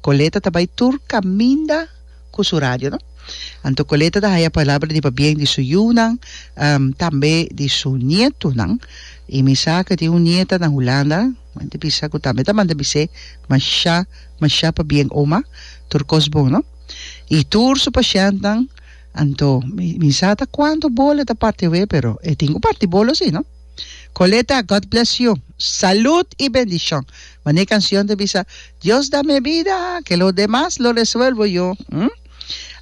Coleta ta bay tur caminda cu su radio, no? Anto Coleta ta haya palabra di pabien di su yiunan, tambe di su nietonan. Y mi sa cu tin un nieta na Hulanda, m'a di bisa cu tambe ta manda bis'é masha, masha pabien, Oma, tur cos bon, no? Y tur su pashentnan, anto mi sa ta cuanto bolo e ta parti awé, pero e tin cu parti bolo si, no? Coleta, God bless you, salud y bendicion! Mane cancion ta bisa, Dios da me bida, ke lo demas lo resuelvo yo, hm.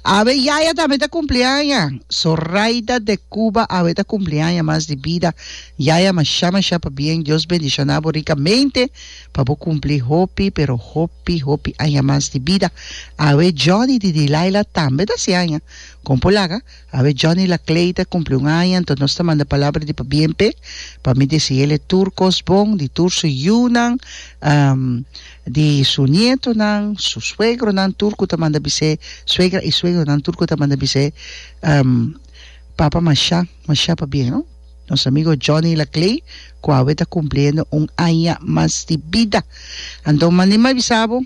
Awe yaya tambe ta cumpli aña, Zoraida de Cuba awe ta cumpli aña mas di bida, yaya masha masha pabien, Dios bendiciona bo ricamente pa bo cumpli hopi pero hopi hopi aña mas di bida, awe Johnny di Dilaila tambe ta haci aña, con por laga? Awe Johnny Lacleide cumpli un aña anto nos ta manda palabra di pabien p'e pa mi deci el'e tur cos bon di tur su yiunan di su nietonan su suegronan tur cu ta manda bis'e suegra y suegronan tur cu ta manda bis'e papa masha masha pabien no nos amigo Johnny Laclei cu awe ta cumpliendo un aña mas di bida anto mandi m'avisabo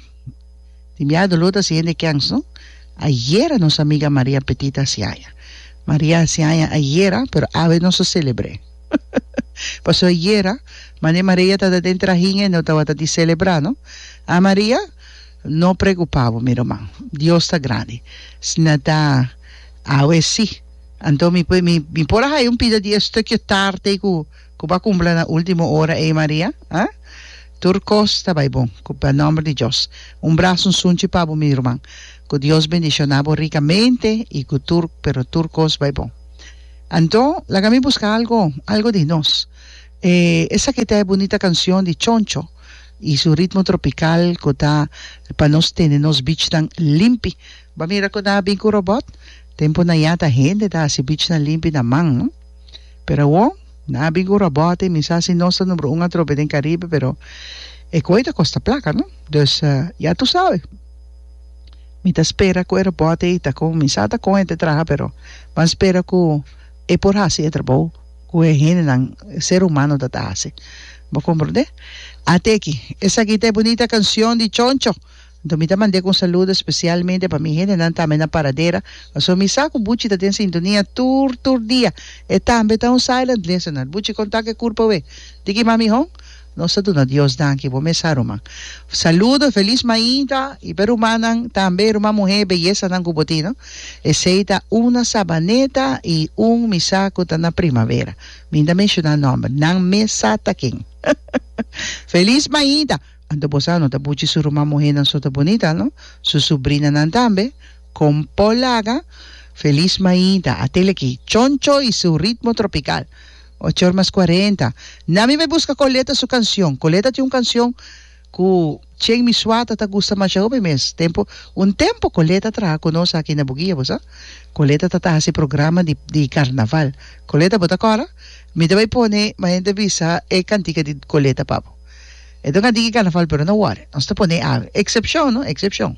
Tin bia doló ta hasi hende kèns, no? Ayera nos amiga Maria Petit a hasi aña. Maria a hasi aña ayera, pero awe nos a selebr'é. Pasó ayera, mane Maria tabata den trahin e no tabata di selebrá, no? A Maria, no preokupá bo, mi ruman. Dios ta grandi. Si nan ta awe sí, anto mi por a haya un pida di e stukio tarte ku. ku ba kumpla na ultimo ora ei Maria ha tur kos ta bai bon ku pa nomber di Dios un braso nsunchi pa bo mi ruman ku Dios bendishona bo rikamente i ku tur pero tur kos bai bon anto laga mi buska algo algo di nos e esaki ta e bunita kansion di choncho i su ritmo tropikal ku ta pa nos tene nos bichnan limpi ba mira ku nan a bin ku robot tempunan ya ta hende ta hasi bichnan limpi na man. pero awor na bin cu robot y mi sa si nos ta numero un atrobe den Caribe pero e coe ta costa placa no dus ya tu sabe mi ta spera cu e robot ey ta con mi sa ta con e ta traha pero ban spera cu e por haci e trabou cu e hendenan ser humano ta ta haci bo comprende ateki esaki ta e bunita cancion di choncho. Anto mi ta mand'é ku un saludo espesialmente pa mi hendenan tambe na Paradera, paso mi sa ku Buchi ta den sintonia tur tur dia. E tambe ta un silent listener. Buchi kon ta ku e kurpa wé? Di ki man mi hon? Nos ta duna Dios danki bo mes sa ruman. Saludo, felis mainta i p'e rumannan tambe, ruman muhé beyesanan ku bo tin no. Esei ta una Sabaneta i un mi sa ku ta na Primavera. Minda menshoná nòmber nan mes sa ta ken. Felis mainta! Anto bo sa, no ta buchi su ruman muhénan so ta bunita, no? Su subrinanan tambe. Kon por laga Feliz Maida a tele aki, Choncho i su ritmo tropical. Ocho or mas cuarenta. Na mi bai buska kon leta su kansion. Kon leta tin un kansion ku Chen mi suata ta gusta masha hopi mes tempu. Un tempu kon leta traha ku nos aki na Buguia, bo sa. Kon leta ta ta hasi programa di di karnaval. Kon leta bo ta kòrda? Mi ta bai pone, ma hende bisa e kantika di kon leta pa bo. Eto ka diki carnaval pero no worry nos ta pone a excepcion no excepcion.